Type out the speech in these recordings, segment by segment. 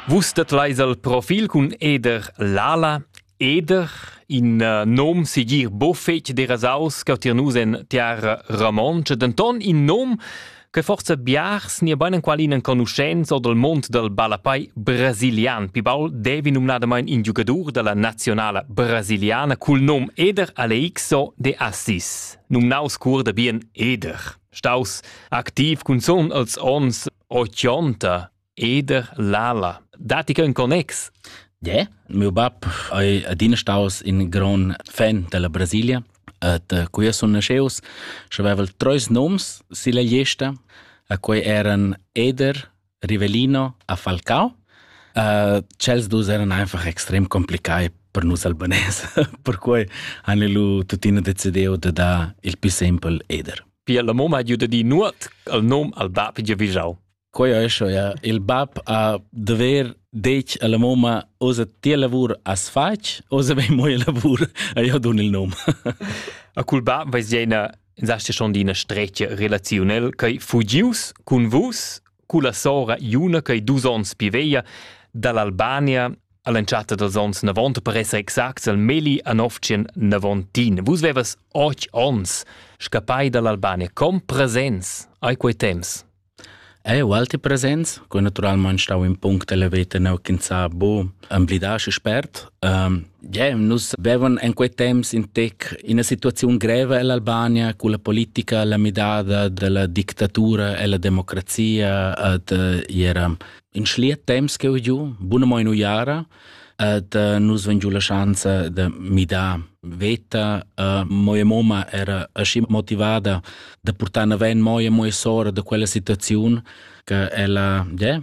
Vus dat leis al profil cun Eder Lala. Eder, in uh, nom sigir buffetg derasaus che tier nus en tiara romontscha, denton in nom che forse biars ni bein qual in enconuschenz o dal mond dal ballapai brasilian. Pibal devi numnadamain in giugadur dalla nazionala brasiliana cul nom Eder Aleixo de Assis, numnaus cur da bien Eder. Staus activ cunzun als ons O chionta, eder l'ala. Datti che un connex? Ja, meu bab è adina staus in gran fan della Brasilia et uh, qui sun nasceus și aveval trois noms silla gliesta a cui eran Eder, Rivelino a Falcao. Uh, cels dus eran einfach extrem complicai per nus albanese, per cui han lu tuttina decidiu de dar il più sempel Eder. Pia la mamma ha giu da dir nuot al nom al bab giavischau. Quei è schon, ja. Il bab ha dover detg alla mamma, osa ti lavur as fatg, osa vei moi lavur, a io dun il nom. A cul bab veis jeina, in sasti schon d'ina streccia relaziunel, che fugius cun vus culla sora Iuna che dus onns pi veglia dall'Albania all'entschatta dals onns 90 per esser exact il Meli Anovcin Navontin. Vus vevas och ons scappai dall'Albania. Com presents ai quei temps? E ualti presents, co naturalmente stau in punct elevato neu chinsa bu amblidasce spert, um, Gem, nus bevan en quei temps in tec ina situaziun greva ell'Albania cu la politica la midada dalla dictatura ella democrazia ad era in schliet temps che ho giu, buna mo in uiara, ad nus vegn giu la schanza da midar veta. Uh, moja moma era aschi motivada da portare avanti moja moja sora da quella situazione che ella yeah,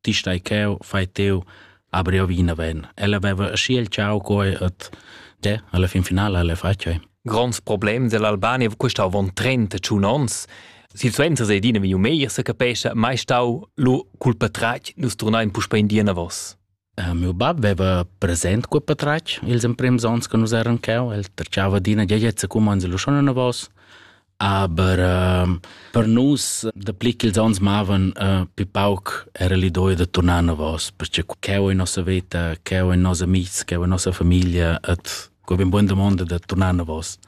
ti stai cheu, fai teu, abri o vinaven. Ella veva aschi il ciao coi et de, alla fin finale alle facei. Gronds problem dell'Albania custau von 31 ons. Situazione se dina viu meglio se capesce, mai stau lu culpa trac nus turnain puspa in dina vos. Uh, meu bab aveva present cu patrac ils emprims ons che nus eran cheu, el tracciava dina geiezza cum anzi lu schon una vos. Aber äh, per nus, dapli ch'ils ons mavan, äh, pi pauc era l'idea da tornar navos, perché cheu in nossa veta, cheu in nossa amics, cheu in nossa famiglia, et que ben buona domanda da tornar navos.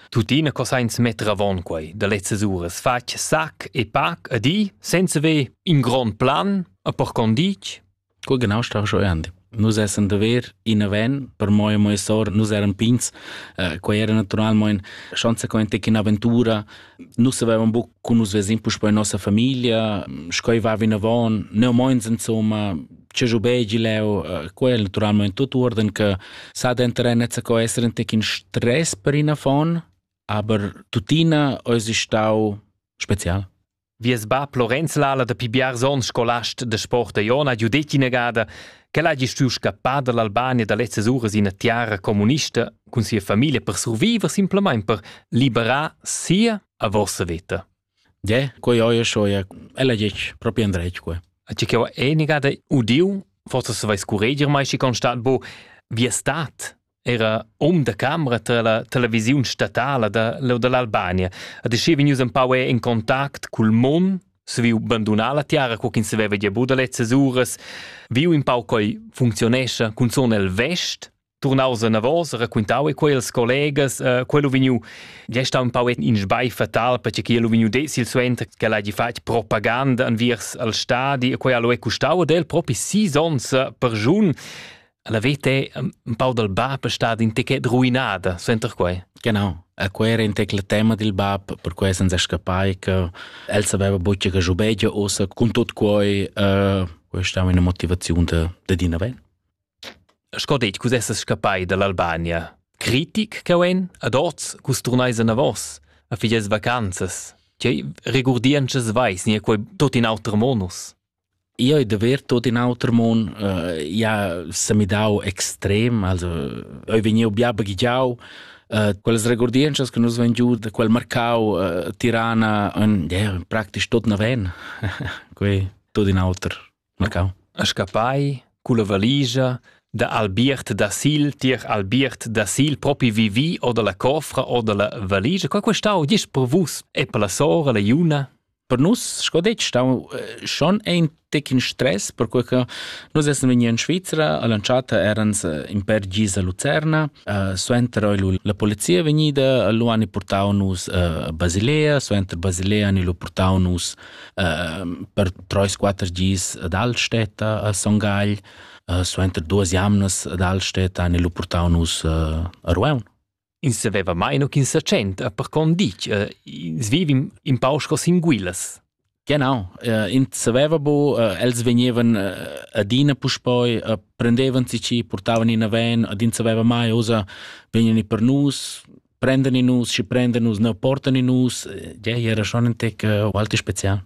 Tuttina cosa ins metter avon quei da lezzas uras fatg sac e pac a di senza ve in grond plan a per condic Co genau sta jeu andi? Nus essan da ver ina van, per mo e mo e sor, nus eran pigns, eh, quei era naturalmein consequente ch'in'aventura, nus avevan buc cun nus vesin puspei nossa famiglia, sch'ei va vinavon, neu meins insomma, ce giu begi leu, eh, quel naturalmein tot uorden che sa dentere nezza co esser in tec in stress per ina von, aber tuttina eis stau spezial. Vies bab Lorenz Lala da pi biars onns scolast de sport a Iona ha giu detg inagada ch'el hagi stuiu scappar dall'Albania da lezzas uras ina tiara communista cun sia famiglia per surviver simplamain per liberar sia a vossa veta. Je, quei oie soia, ella dic proprio andrec quei. A ci che ho enigada udiu, forse se vais cureger mai si constat bo, vi è stat era um da camera tra la televisiun statala da l'Albania ha deschì vegnius empau in contact cul Mon saviu bandunar la tiara co ch'ins saveva gia buca da lezzas uras viu in pau coi funzionescha cunzun el vest turnaus anavos raquintau e quei als collegas uh, quello vegniu gesta un pau in sbai fatal perché che lu vegniu decil suenter che l'hagi fatg propaganda anviers al stadi e quei allo è custau ad el propi sis ons per giun La veta è un pau dal bab è stat in techet ruinada, suenter quai. Genau. E quel era in tecla tema del bab, per cui senza scappai che el sapeva bucce che giubegia ossa con tot quai, uh, questa è una motivazione de, de Dina Ven. Sco detg, cus essas scappai dall'Albania. Critic che en, ad oz, cus turneis a vos, a figias vacanzas. Tgei regurdientschas vais, nie quei tot in auter monus? Io ei davêr tuot in auter mun. Äh, ia s'ha midau extrem, also eu vegniu bia baghegiau. Äh, quellas regurdientschas che nus vain giu da quel marcau äh, Tirana in, yeah, praktisch tot naven. Quei tuot in auter marcau. A scappai culla valigia da Albiert da Sil, tier Albiert da Sil, propi vivi o dalla cofra o dalla valigia. Qua questau, gis per vus e per la sora, la Iuna? per nus, sco detg, stau eh, schon ein tec in stress, perque che nus essen vegni in Svizzera, all'entschatta erans eh, in per gis a Lucerna, uh, suenter oi la polizia vegnida, lu han portau nus uh, Basilea, suenter Basilea han lu portau nus uh, per treis quater gis ad Altstädter a Son Gagl, uh, suenter duas jamnas ad Altstädter han lu portau nus uh, a Rueun. Ins saveva mai no ch'ins sa tschent, per con ditg, uh, ins vivim in pau sco sin guilas. Genau, uh, ins saveva bu, uh, els vegnevan uh, adina puspoi, uh, prendevan si ci, portavan in aven, ad ins saveva mai, osa, vegnan i per nus, prendan i nus, ci prendan nus, ne portan i nus, ja, era schon ein tec uh, ualti spezial.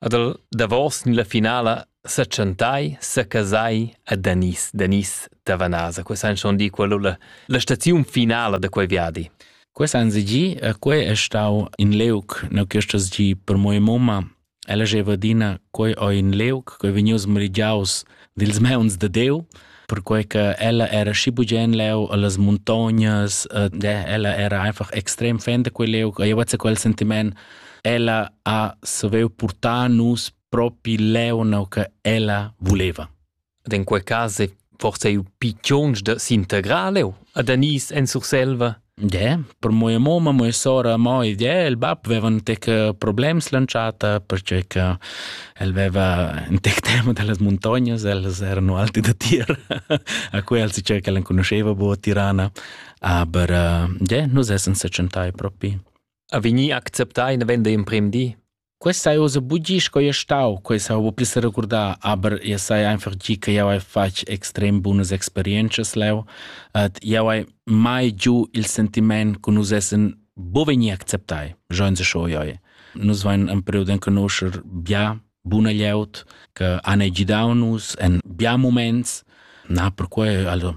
Ad el davos ni la finala setschentai, secasai a Danis, Danis da Vanasa. Quei san schon dir quello la, la staziun finala da quei viadi. Quest anno gi, e quei è stau in leuc, no questas gi per mia mamma, ella geva dina, quei o in leuc, quei vegnius merigiaus dils meuns da Diu, perquei che ella era schi bugen leu allas montognas, e ella era einfach extrem fan da quel leu, io vezza quel sentiment, ella ha saviu portar nus propi leu no che ella voleva. Ed in quei cas è forse eu piccions da s'integrar leu ad Anis en Surselva. Gie, per mia mumma, mia sora, mo ed el, il bab veva un tec problems l'entschatta pertgei che el veva in tec tema dallas muntognas, els erano alti da tir, a quei els diceva che l'enconuscheva buca Tirana, aber gie, nus essan sechentai propi. A vegnir acceptai in vender in prim di? Questa hai ussa bugi sco ei stau, quei sa buca pli seregurdar, aber jeu sai einfach gi che jau hai fatg extrem bunas experientschas leu et jau hai mai giu il sentiment che nus essen bu vegni acceptai, schon se scho joi. Nus vein in period in conoscer bia buna glieud che han gidau nus en bia moments. Na, perquei also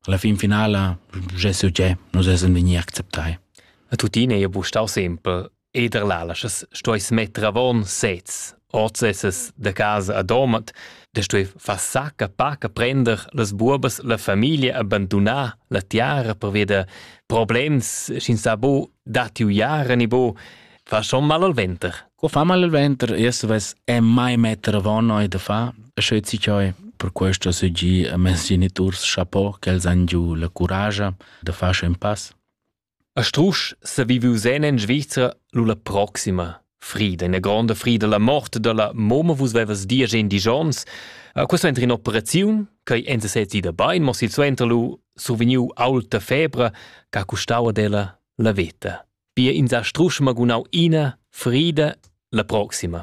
alla fin finala, je so je, nus essen vegni acceptai. E tuttina ei bu stau sempel Eder lalaschas stueis metter avon sez, ord sesas da casa a Domat, da stui far sacca paca prender las buobas la famiglia abbandunar la tiara per veder problems sc'in sa bo datti uiara ni bo fa schon mal al venter. Qua fa mal al venter, erst ves è mai metter avon noi da fa, sche ci cioi per questo se gi a mes geniturs chapeau che els han giu la courage da far un pass. A strusch s'ha viviu sen en Svizra lu la proxima frida, ina gronda frida, la mort dalla momma. Vus vevas diesch endisch onns. Eh, Questa suenter in'operaziun ch'ei enza sez ida bein, mo silsuenter lu survegniu aulta febra ch'ha custau ad ella la veta. Pia ins ha strusch magunau ina frida, la proxima.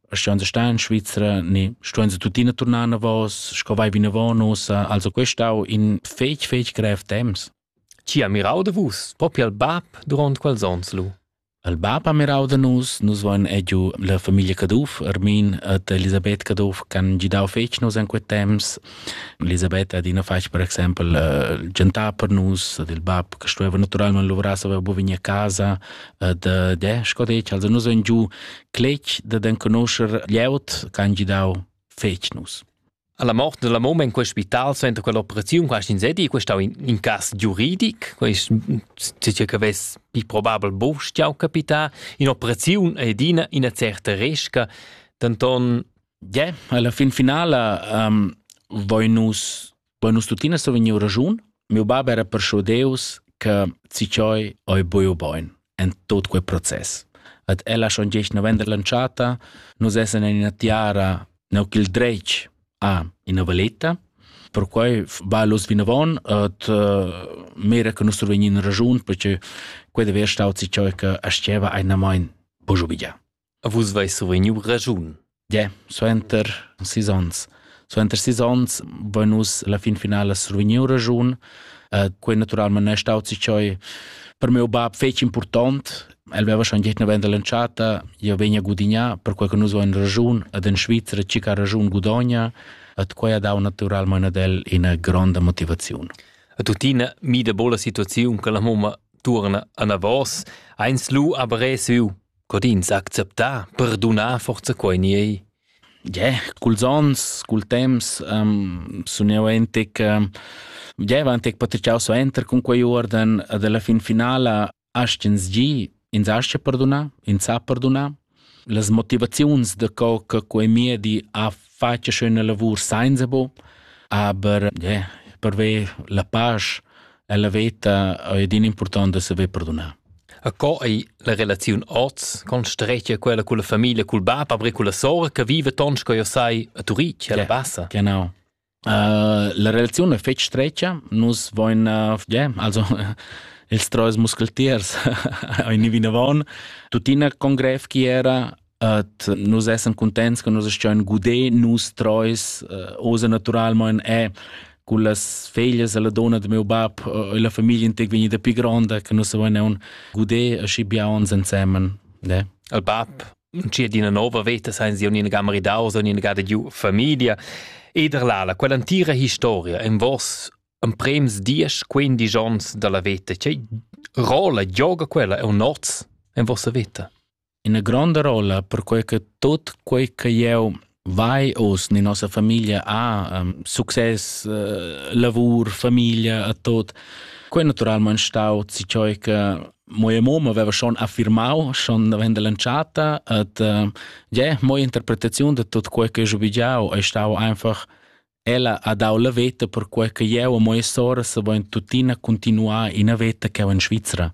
Ston se star in Svizzera, ne ston se tuttina tornar navos, sco vai vinavon ussa, also questau in fec fec grev temps. Ci ha mirau de vus, propi al bab durant quels ons lu. Al bab ha mirau de nus, nus voin egiu la famiglia Caduff, Armin et Elisabeth Caduff, can gidau fec nus in quet temps. Elisabeth ad ina fac, per exempel, uh, gentar per nus, ad il bab, che stueva naturalmente lavorar, aveva bovini a casa, ad, uh, de, sco dec, also nus voin giu cletg dad enconoscher glieud che han gidau fetg nus. Alla morte della mamma in quel spital suenter quell'operazione quasi insedi questo in, in caso giuridic questo c'è che ves più probabile bostia capita in operazione ed in una certa resca tanton yeah alla fin finale um, voi nus Poi nus tuttina sto vegnir raschun, mio bab era perscho Deus che Ciccioi oi buio boin en tot quei process. At ella schon gest november lanciata, nus essen in ina tiara neu ch'il dretg a ina valetta. Per quei va los vinavon et uh, mira che nus survegnin ragiun perché quei de ver stau Ciccioi che asceva ein main bujo bigia. A vus veis survegniu raschun. Yeah, suenter sis onns. Suenter sis onns vein nus la fin finala survegniu raschun. Uh, quei naturalment è staut sich choi per meu bab fetg important. El veva schon gehit venda l'entschatta, io vegna gudigna, per quei che nus vein raschun ad en Svizzera ci ca raschun gudogna, at quei ha dau naturalment ad el ina gronda motivaziun. A tuttina mi de bola situaziun che la mamma turna anavos, eins lu aber resu co d'ins acceptar perdunar forza quei ni ei? Yeah, culs onns, cul temps um, sun jeu entec um, jeva entec patritgau suenter cun quei uorden ed alla fin finala astg'ins gi, ins astga perdunar, ins sa perdunar. Las motivaziuns da co che quei miedi ha fetg schöna lavur senza bo, aber yeah, per ver la pace e la veta è din important da saver perdonar. A co ei la relaziun oz con strecia quella con la famiglia, col bab, aber con la sora che vive tons co io sai a Turic, alla Bassa. Genau. Uh, la relazione è fetg streccia, nus voin, uh, yeah, also ils trois muscletiers in vinavon, tuttina con grev chi era Et nus essan contents che nus astgein guder nus treis uh, osa naturalmein è con las feglias e la donna de meu bab uh, e la famiglia integ vegnida pi gronda che nus avein un guder aschi bia ons ensemen. Ne? Al bab Cia d'ina nova veta sein sie un'ina maridaus, un'ina gada giu famiglia. Ed erlala, quell'antira historia en vos en prems dies quindi gions dalla veta, che rola gioga quella è un noz en vossa veta? ina gronda rolla perquei che tut quei che jeu vai oz ni nossa famiglia ha um, success uh, lavur famiglia a tot quei naturalmein stau ci cioi che moja mom aveva schon affirmau schon davent dell'entschatta et uh, ja moja interpretaziun de tot quei che jo bigiau è stau einfach ella ha dau la veta per quei che jeu e moja sora se voin tuttina continuar in veta che in Svizzera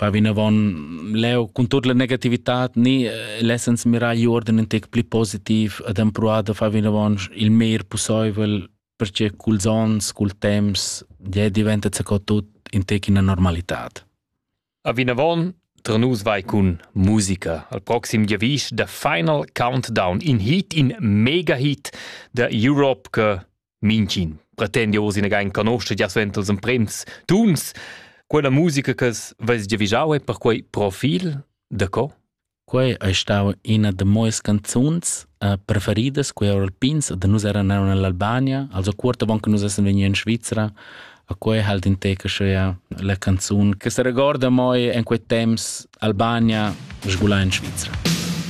va vinavon leu cun tut la negativitad ni eh, lessens mirar gli ordine un tec pli positiv ad empruar da far vinavon il meir possibel perché culs ons, cul temps, ja diventa co tut in tec ina normalitad. A vinavon Tra nus vai cun musica. Al proxim giavisch da Final Countdown in hit, in mega hit da Europe che Mincin pretendi oz ina gain canoscia gia suenter els emprems tuns. Quella musica che veis gia vigiau è perquei profil da co? Quei ei stau ina da moes canzuns uh, preferidas, quei era Alpins, da nus eran eran nell'Albania, also cuorta bon che nus essen vegni in Svizzera. A quei halt in teca sche la canzun che se regorda moi en quei temps Albania sgula in Svizzera.